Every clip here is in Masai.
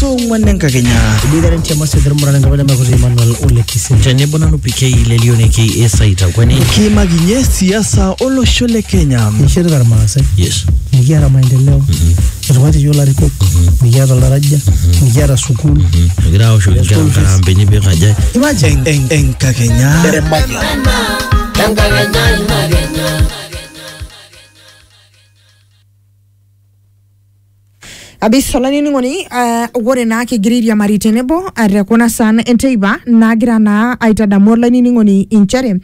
tong'wan enkakenya Ibigaren tia masia tero murana ngabana makuti Emmanuel Ole Kisin. tenebo nanu PK lelioneki esaita kwani kiimakinye siasa olosho le kenya Nishirita irmaasai. yes Mikiata maendeleo. Etung'uatie iyiok ilarikok. Mikiata olaraja. Mikiata sukuul. egira aoshoki nkera nkarambeni pikaja Imagine. Eng- eng- enkakenya Abisho olainining'oni eh, ore naa kigira airiamari tenebo eh, te kuna saan enteipa naagira naa aitadamu olainining'oni inchere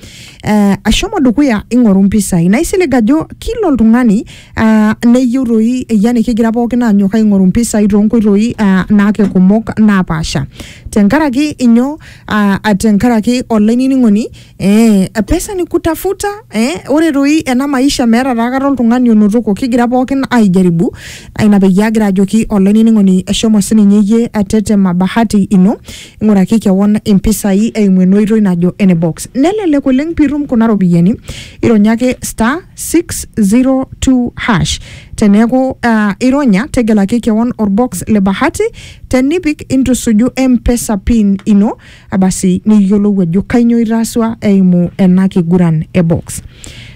eh, ashomo dukuya ing'oru mpisai naisilig ajo kila oltung'ani ah, neyieu toi yani kigira pookin aanyok aing'oru mpisai toonkoitoi ah, naake kumok napaasha tenkaraki inyoo ah, tenkaraki olainining'oni Eh, pesa ni kutafuta eh, ore doi ena maisha meeta taa kata oltung'ani onotoko kigira pookin aijaribu Ah, ina peyie agira ajoki olainining'oni eshomo sininye iyie atetema bahati ino ing'uraki kewon impisai eimu ena oitoi najo ene box nelelek oleng piitum kuna ropiyiani ironya ake star 602 hash teneeku ah, ironya tegelaki kewon orbox le bahati tenipik intusuju mpesa pin ino Basi nikiyiolou ajo kainyoo itaasua eimu ena kiguran e box.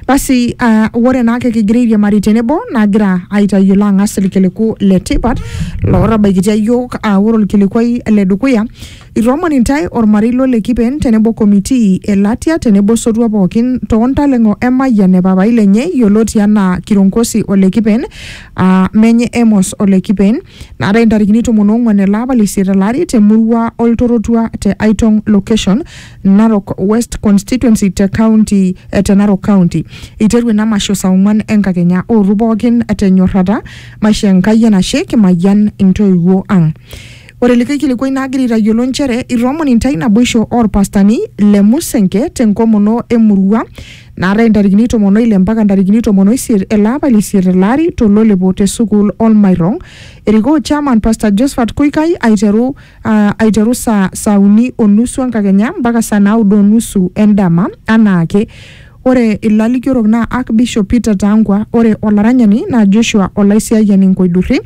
Basi uh, ore naake kigira airiamari tenebo nagira aitayiolo ang'as irkiliku le tipat lootabaikitia iyiook uh, ore orkilikuai le dukuya itoomon intae ormarei lo le Kipen tenebo komitii e Latia tenebo sotua pookin too ntaleng'o e Mayian e papai lenye yioloti anaa Kironkosi ole Kipen uh, menye Emos ole Kipen naatae intarikini tomon oong'uan ele apa le isiet elari te murua oltorotua te Aitong location Narok West constituency te county eh, te Narok county iteru ina masho saa ong'uan enkakenya ootu pookin tenyorrata maisho Enkai enashe kimayian intoiwuo ang Ore likae kilikuai naagira aitayiolo nchere itoomon intae naboisho oorpastani le Musenke tenkomono emurua naatae ntarikini tomon oile mpaka ntarikini tomon oisiet ele apa leisiet ele ari tololepo te sukuul Olmairong. Erikoo chairman Pastor Josephat Kuikai aiteru, ah, aiteru saa, saa uni o nusu enkakenya mpaka saa naudo o nusu endama anaake. Ore ilalikiorok naa Archbishop Peter Tangwa, ore olaranyani naa Joshua Olaisiayiani Nkoidurri,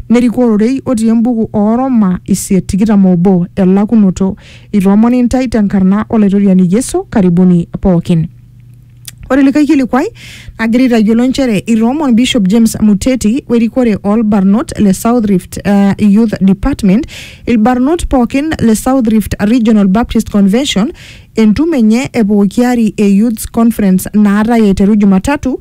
nerikoo ororei otii embuku oo Roma isiet tikitam obo elakunoto Itoomoni intae tenkarna Olaitoriani Yesu, karibuni pookin. Ore likae kilikuai nagira aitayiolo nchere itoomon Bishop James Muteti werikore oolbarnot le South Rift eh, Youth Department ilbarnot pookin le South Rift Regional Baptist Convention entumo enye e pooki ari e Youths Conference naatae aiteru Jumatatu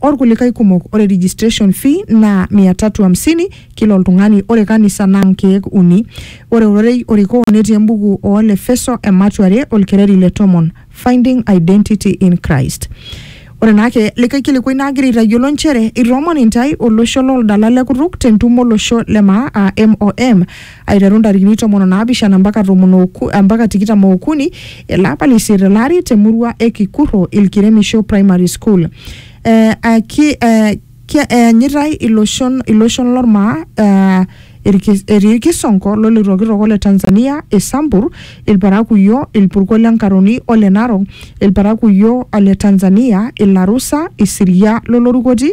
orkulikai kumok ore registration fee naa 350 kila oltung'ani ore kanisa naa nkeek uni ore ororei orikoo netii embuku oo lefeso ematua are olkereri le tomon finding identity in christ ore naa ake likae kilikuai naagira aitayiolo nchere itoomon intae olosho looldala lekutuk tentumo olosho le maa aa MOM aiteru ntarikini tomon o naapishana mpaka tomon oku, mpaka tikitam ookuni ele apa le isiet ele ari te murua e Kikurro Ilkiremisho Primary School. Eh, eh, ki, eh, ki, eanyitai iloshon, iloshon lormaa eh, irki- etii irkisonko loloitokitook ole Tanzania, Isambur, Ilparakuyo, Ilpurko le Nkaroni o le Narok, Ilparakuyo ole Tanzania, Ilarusa, Isiria lolorukoti,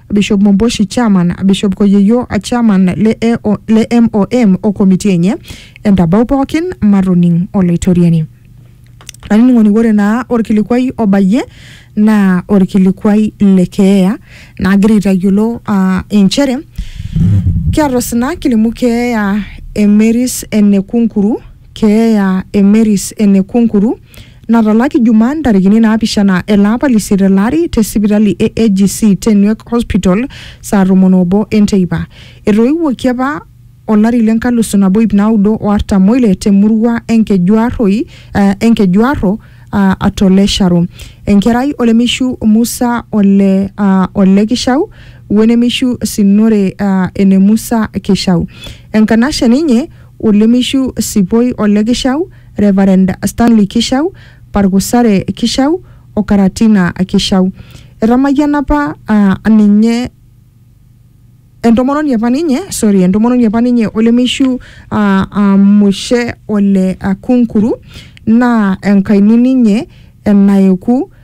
Bishop Momboshi, Chairman, Bishop Koyeyo, Chairman le, AO, le MOM o komiti enye entabau pookin matoning Olaitoriani. Olainining'oni ore naa orkilikuai obayie naa orkilikuai le keeya nagira aitayiolo ah, inchere kiata osina kilimu keeya emeris enekunkuru keeya emeris enekunkuru natalaki Jumaa ntarikini naapishana ele apa le isiet ele ari te sipitali e AGC te Nweek Hospital saa tomon oobo e nteipa. Etoiwuoki apa olari le nkalusu nabo iip naudo o artam oile te murua e Nkejuarroi, e Nkejuarro a to Lesharu. Enkerai olemeishu Musa ole ole Kishau we nemeishu Sinore ene Musa Kishau. Enkanashe ninye olemeishu Sipoi ole Kishau. Reverend Stanley Kishau, Pargusare Kishau o Karatina Kishau. Etamayiana apa aa ninye entomononi apa ninye, sorry, entomononi apa ninye olemeishu aa aa Mushe ole Akunkuru naa enkaini ninye enaeku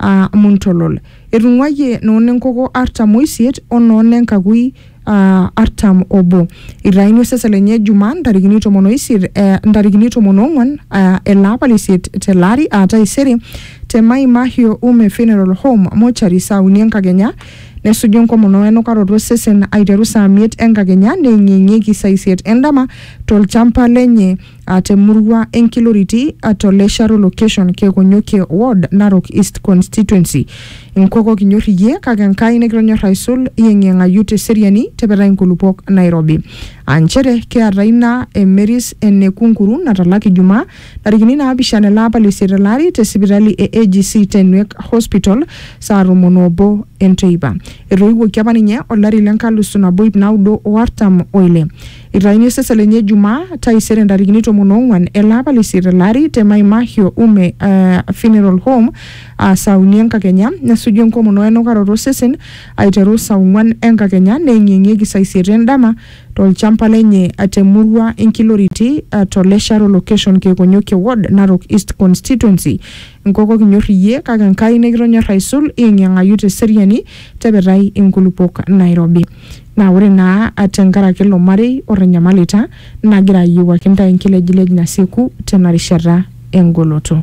aa muntolol. Etung'uayie noo ne nkoko artam o isiet o noo ne nkakui aa artam o obo. Eitayuni osesen lenye Jumaa ntarikini tomon o isiet e ntarikini tomon o ong'uan e ele apa le isiet te ele ari aa taisere te Mai Mahiu Ume Funeral Home Mortuary saa uni enkakenya. Nesuju enkomono e nukaroto o sesen aiteru saa miet enkakenya neeng'ieng'ieki saa isiet endama to lchamba lenye a te murua e Nkiloriti a to Lesharo location Kekonyokie ward Narok East constituency. Nkoko kinyor iyie kake Enkai nikitonyor aisul iyeng'iyeng'ayu te seriani tepetai nkulupok nairobi. Aa nchere kiata ina e Mary's ene Kunkuru natalaki Jumaa ntarikini naapishana ele apa le isiet ele ari te sipitali e AGC te Nwek Hospital saa tomon oobo enteipa. Etoiwuoki apa ninye olari le nkalusu nabo iip naudo o artam o ile. Eitayuni osesen lenye Jumaa taisere ntarikini tomon oong'uan ele apa le isiet ele ari te Maimahio Ume eh, Funeral Home aa saa uni enkakenya nesuju enkomono wenukaroto osesen aiteru saa ong'uan enkakenya neeng'ieng'ieki saa isiet endama tolchamba lenye te murua Inkiloriti eh, to Lesharo location Keekonyokie ward Narok East constituency. Nkoko kinyor iyie kake Enkai nikitonyor aisul iyeng'iyeng'ayu te seriani tepetai inkulupuok Nairobi. Naa ore naa te nkaraki ilo marei otanyamalita, nagira ayiewuaki intae enkilejilej nasieku tena rishata e ngoloto.